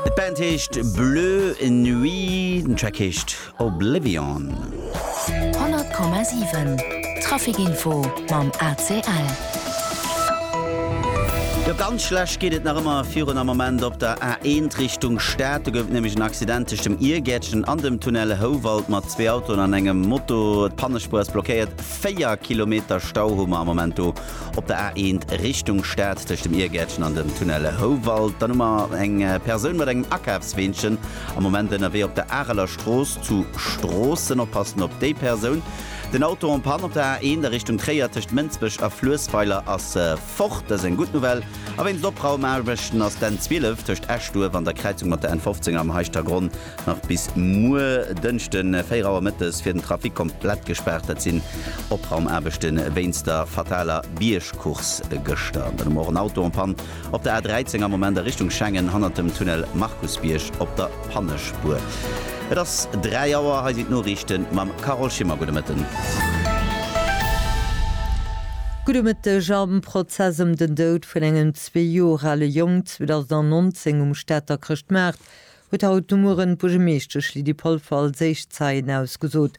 D'Band heescht Bleu Nuit, den Track heescht Oblivion. 100,7 Traficinfo mam ACL. Jo ganz schlecht geet et nach ëmmer virun am Moment op der A1 Richtung Stad. Do gouf et nämlech en Accident tëscht dem Irgäertchen an dem Tunnel Houwald mat zwee Autoen an engem Moto. D'Pannespuer ass blockéiert, 4 Kilometer Stau hu mer am Moment do. Op der A1 Richtung Stad tëscht dem Iergärtchen an dem Tunnel Houwald, dann hu mer eng Persoun mat engem Akafsweenchen am Moment ënnerwee op der Areler Strooss zu Stroossen. Oppassen op déi Persoun. Den Auto en panne op der A1 a Richtung Tréier tëscht Mënsbech a Fluessweiler ass fort. Dat ass eng gutt Nouvelle. A wéinst Opraumaarbechten ass d'N 12 tëscht Eschduerf an der Kräizung mat der N 15 am Heischtergronn Nach bis muer Dënschde 4 Auer mëttes wier den Trafic komplett gespaart. Dat sinn Opraumaarbechte wéinst der fataler Biergcourse gëschter. Dann hu mer och en Auto en Panne op der A13 am Moment a Richtung Schengen hannert dem Tunnel Markusbierg op der Pannespuer. Et ass 3 Auer, hei sinn d'Noriichte mam Carole Schimmer. Gudde Mëtten. Gudde Mëtteg. Am Prozess ëm den Doud vun engem zwee Joer ale Jong 2019 um Stater Chrëschtmaart huet haut de Mueren d'Buergermeeschtesch Lydie Polfer als éischt Zeien ausgesot.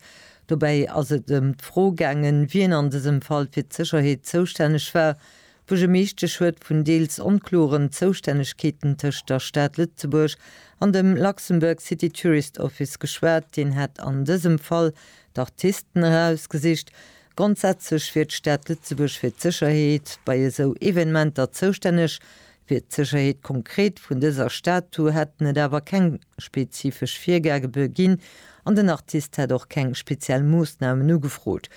Dobäi ass et ëm d'Fro gaangen, wien an dësem Fall fir d'Sécherheet zoustänneg war. D'Buergermeeschtesch huet vun deels onkloren Zoustännegkeeten tëscht der Stad Lëtzebuerg an dem Luxembourg City Tourist Office geschwat, deen hätt an dësem Fall d'Artisten erausgesicht. Grondsätzlech wier d'Stad Lëtzebuerg fir d'Sécherheet bei esou Evenementer zoustänneg, Fir d'Sécherheet konkret vun dëser Statu hätten et awer keng spezifesch Virgagebe ginn an den Artist hätt och keng speziell Moossnamen ugefrot.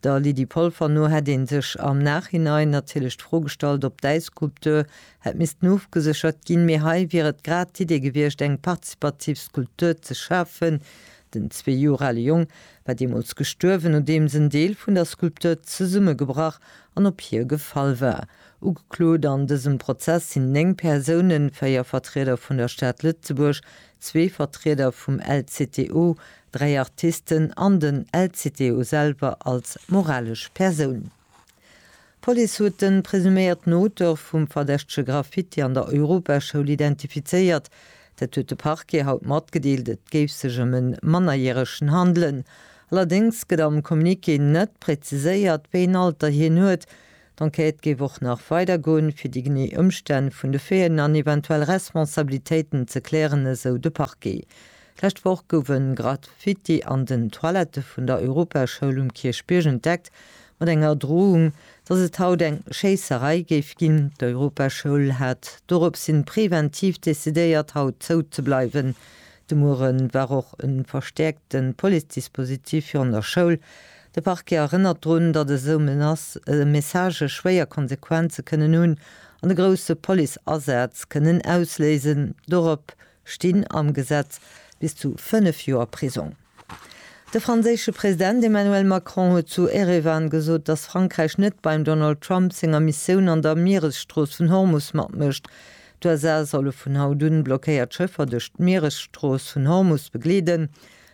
Der Lydie Polfer no hätt ee sech am Nachhinein natierlech d'Fro gestallt, ob d'Äisskulptur hätt missten ofgeséchert ginn, mee hei wier et grad d'Idee gewiescht, eng partizipativ Skulptur ze schafen. Den zwee Joer ale Jong war deemools gestuerwen, nodeems en Deel vun der Skulptur zesummegebrach an op hie gefall war. Ugeklot an dësem Prozess sinn 9 Persounen, 4 Vertrieder vun der Stad Lëtzebuerg, zwee Vertrieder vum LCTO, dräi Artisten an den LCTO selwer als moralesch Persoun. D'Police huet de presuméierten Auteur vum verdächtege Graffiti an der Europaschoul identifizéiert. Dat huet de Parquet haut matgedeelt. Et géif sech ëm e Mannerjäregen handelen. Allerdéngs gëtt am Communiqué net präziséiert, wéi en Alter hien huet. D'Enquête géif och nach weider goen, fir déi genee Ëmstänn vun de Faiten an eventuell Responsabilitéiten ze klären, esou de Parquet. D'lescht Woch gouf e Graffiti an den Toilette vun der Europaschoul um Kierchbierg entdeckt, mat enger Drohung, datt et haut eng Schéisserei géif ginn. D'Europaschoul hat doropshin preventiv decidéiert, haut zou ze bleiwen. De Muere war och e verstäerkte Police-Dispositif virun der Schoul, De Parquet erënnert drun, datt esou Menacë a Messagë schwéier Konsequenze kënnen hunn an e grousse Police-Asaz kënnen ausléisen. Dorop stinn am Gesetz bis zu 5 Joer Prisong. De franséische President Emmanuel Macron huet zu Erevan gesot, datt Frankräich net beim Donald Trump senger Missioun an der Mieresstrooss vun Hormus matmécht. D'USA solle vun haut un blockéiert Schëffer duerch d'Mieresstrooss vun Hormus begleeden,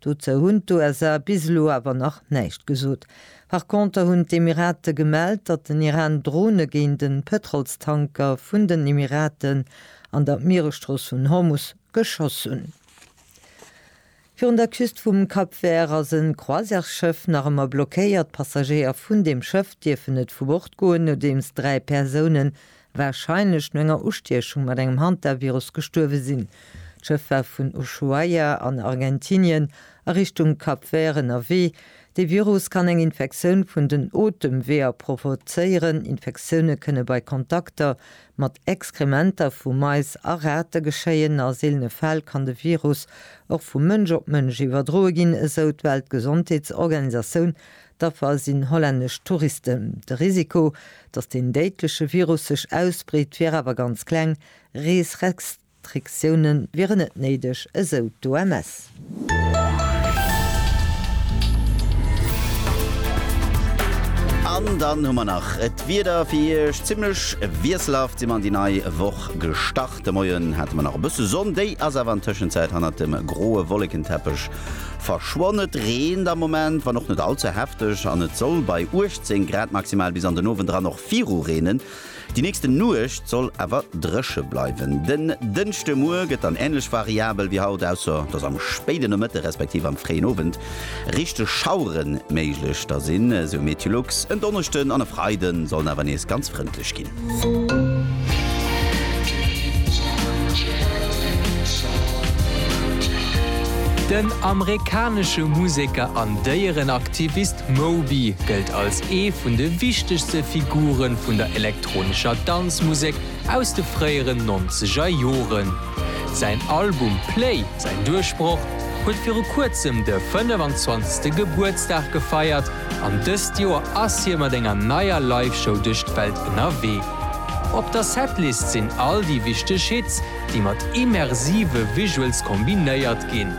Dozou hunn d'USA bis elo awer nach näischt gesot. Par Konter hunn d'Emirate gemellt, datt den Iran Drone géint e Pëtrolstanker vun den Emiraten an der Mieresstrooss vun Hormus geschoss hunn. Virun der Küst vum Cap Vert ass e Croisièresschëff nach ëmmer blockéiert. D'Passagéier vun deem Schëff dierfen net vu Bord goen, nodeems dräi Persounen warscheinlech no enger Ustiechung mat engem Hantavirus gestuerwe sinn. D'Schëff war vun Ushuaia an Argentinien a Richtung Cap Vert ënnerwee. De Virus kann eng Infektioun vun den Otemweeër provozéieren. Infektioune kënne bei Kontakter mat Exkrementer vu Mais a Rate geschéien. A seelene Fäll kann de Virus och vu Mënsch op Mënsch iwwerdroe ginn, esou d'Weltgesondheetsorganisatioun D'Affer sinn hollännesch Touristen. De Risiko, datt deen déidleche Virus sech ausbreet, wier awer ganz kleng. Reesrestriktioune wieren net néideg, esou d'OMS. An dann hu mer nach d'Wieder fir Iech. Zimmlech wiesselhaft si mer an déi nei Woch gestart. De Moien hate mer nach e bësse Sonn, déi ass awer an Tëschenzäit hannert dem groe Wollekenteppech Verschwonn. Et reent am Moment, wann och net all ze hefteg, an et soll bei 18 Grad maximal bis an den Owend eran och viru reenen. Déi nächste Nuecht soll awer dréche bleiwen. Den Dënschde Muer gëtt dann änlech variabel wéi haut, ausser dass am spéide Nomëtte respektiv am fréien Owend richteg Schauere méiglech. Da sinn, esou Meteolux, en Donneschden an e Freide sollen awer nees ganz frëndlech ginn. Den amerikanesche Museker an Déierenaktivist Moby gëllt als ee vun de wichtegste Figure vun der elektronescher Danzmusek aus de fréieren nonzeger Joren. Säin Album Play, säin Duerchbroch, huet viru kuerzem de 25. Gebuertsdag gefeiert, An dëst Joer ass hie mat enger neier Live-Show duerch d'Welt ënnerwee. Op der Setlist sinn all déi wichteg Hits, déi mat immersive Visuals kombinéiert ginn.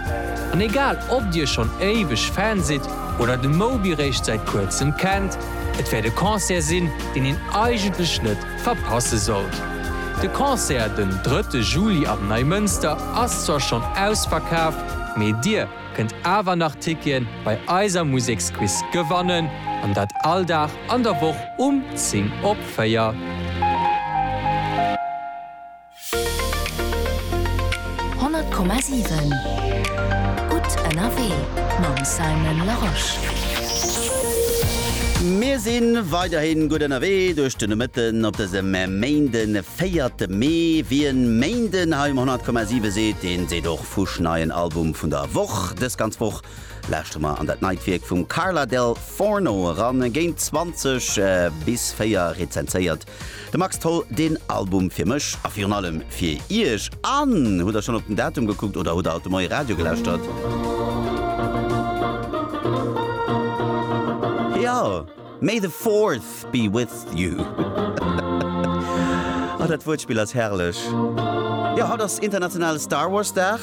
An egal ob dir schonn éiweg Fan sidd oder de Moby réischt säit kuerzem kennt, et wäert e Concert sinn, deen een eigentlech net verpasse sollt. De Concert den drëtte Juli am Neimënster ass zwar schonn ausverkaf, mee dir, kënnt awer nach Tickien bei eiser Museksquiz gewannen an dat all Dag an der Woch um 10 op 4. Honnert Komma siwen Gutt ënnerwee mam Simon Larosche. Mir si weiderhin gutt ënnerwee duerch de Nomëtten op dësem Méinden, 4 Mee. Wien Méinden hei um 100,7 seet, dee seet och. Fusch neien Album vun der Woch. Dës ganz Woch lauschtere mer an dat neit Wierk vum Carla Del Forno eran. Géint 20 bis 4 rezenséiert de Max Tholl deen Album fir mech a virun allem fir iech. An hutt der schonn op den Datum gekuckt oder hutt der haut de Moie Radio gelauschtert? Jo! May the Fourth be with you. Ah, dat Wuertspill ass herrlech. Jo, haut ass internationale Star Wars Dag.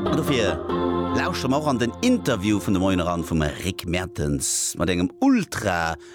An dofir lauschteren mer och an den Interview vun de Moien eran vum Rick Mertens mat engem ultra